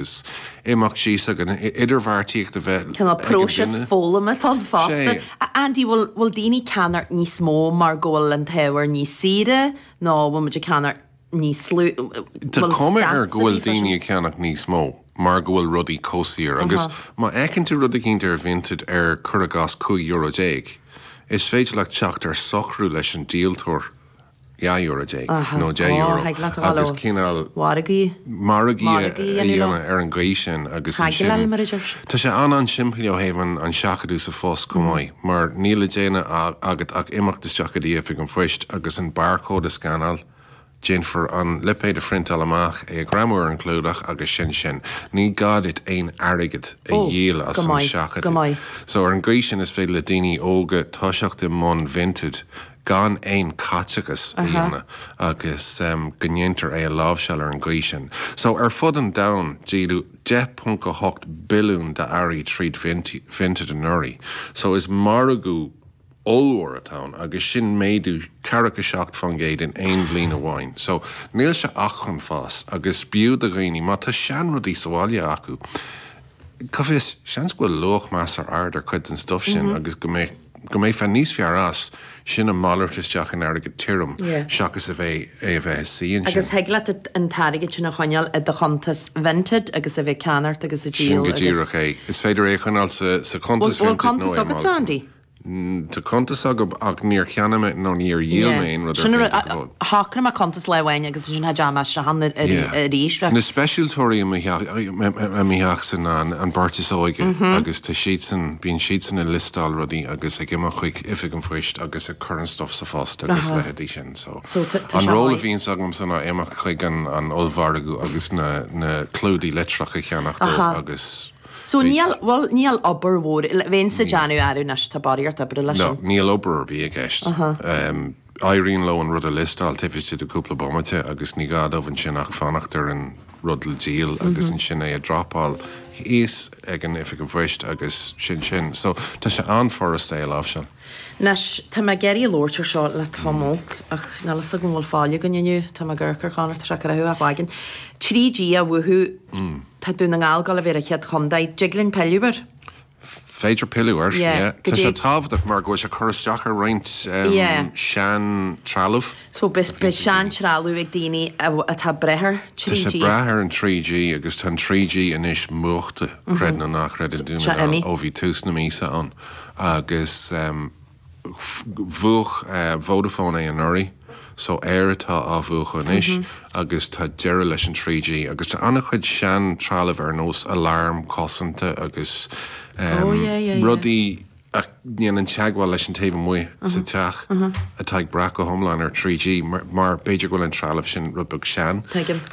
Is é mac Dé sa gcoinne é idirbheartaíocht a bheith ag an duine. Tá cuma air go bhfuil daoine ag ceannach níos mó mar go bhfuil rudaí chomh saor agus má fheiceann tú rud eicínt ar Vinted ar, cuir i gcás, 15 euro, is féidir leat teacht ar socrú leis an díoltóir. 12 euro nó 10 euro agus cineál margaidh a dhéanamh ar an gcaoi sin agus ansin tá sé an-an-simplí ó thaobh an seachadadh sa phost chomh maith mar níl le déanamh agat ach imeacht isteach go dtí oifig an phoist agus an barrchód a scanáil, déanfar an lipéad a phriontáil amach, é a ghreamú ar an gclúdach agus sin sin. Ní gá duit aon airgead a dhíol as an seachadadh. So ar an gcaoi sin is féidir le daoine óga toiseacht i mbun Vinted gan aon chaiteachas a dhéanamh agus go ndéantar é a láimhseáil ar an gcaoi sin. So, ar fud an domhain, díoladh 10.8 billiún d'earraí tríd Vinted anuraidh. So, is margadh ollmhór atá ann agus sin méadú ceathracha seacht fán gcéad in aon bhliain amháin. So, níl sé ach chun fás agus b'fhiú do dhaoine, má tá seanrudaí sa bhaile acu, cá bhfios, seans go bhfuil luach measartha ard ar chuid den stuif sin agus go mbeadh. go mbeifeá níos fearr as, sin a mhalairt isteach in airgead tirim seachas a bheith é a bheith ina shuí ansin. Agus thig leat an t-airgead sin a choinneáil i do chuntas Vinted agus a bheith ag ceannacht agus ag díol agus. Sin go díreach é. Is féidir é a choinneáil sa sa chuntas Vinted nó é a. Bhfuil cuntas agatsa Andy? Tá cuntas agam ach níor cheannaigh mé nó níor dhíol mé aon rud ar Vinted go fóill. shocraigh mé cuntas lá amháin agus ansin ní dheachaigh mé isteach ann arís. Na speisialtóirí i mo theachsa ná an bheirt is óige agus tá siadsan, bíonn siadsan ag liostáil rudaí agus ag imeacht chuig Oifig an Phoist agus ag cur an stuff sa phost agus a leithéidí sin so an ról a bhíonns agamsa ná imeacht chuig an ollmhargadh agus na clúdaigh litreach a cheannach dóibh agus So níl, bhuel níl obair mhór, bheinnse ag déanamh arú anois tá barraíocht oibre leis sin. No, níl obair ar bith i gceist. Éiríonn leo an rud a liostáil taobh istigh de cúpla bomaite agus ní gá dóibh ansin ach fanacht ar an rud le díol agus ansin é a dhropáil thíos ag an oifig an phoist agus sin sin. So, tá sé an-fhurasta é a láimhseáil. Anois, tá mé ag iarraidh labhairt ar seo le tamall ach níl 'fhios agam an bhfuil faill againn inniu. Tá mé ag amharc ar Chonor, tá sé ag croitheadh a chloigeann. 3G á mhúchadh, tá Dún na nGall ag gabháil a bheith ar an chéad chontae. Dtig linn pilleadh air? féidir pilleadh air. Tá sé tábhachtach mar go bhfuil sé ag cur isteach ar roinnt seantrealamh. So beidh seantrealamh ag daoine atá ag brath ar 3G. Tá sé ag brath ar an 3G agus tá an 3G anois múchta, creid nó ná creid, ó bhí tús na míosa ann agus. Bhuaigh Vodafone é anuraidh so Eir atá á bhuachadh anois agus tá deireadh leis an 3G agus tá an-chuid sean trealamh ar nós alarm cosanta agus rudaí a dhéanann teagmháil leis an taobh amuigh sa teach atá ag brath go hiomlán ar 3G mar b'fhéidir go bhfuil an trealamh sin rud beag sean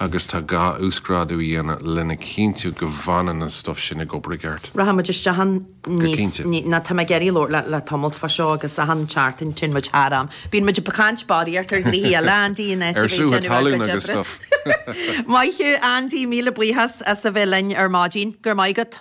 agus tá gá uasghrádú a dhéanamh lena chinntiú go bhfanann an stuif sin ag obair i gceart. Rachaimid isteach an. go cinnte. Ní tá mé ag iarraidh labhairt leat le tamalt fá seo agus achan tseachtain téann muid thar am. Bíonn muid ag caint bodhraíocht ar rudaí eile Andy in áit a bheith ag déanamh ár gcuid oibre. Maith thú Andy, míle buíochas as a bheith linn ar maidin. Go raibh maith agat.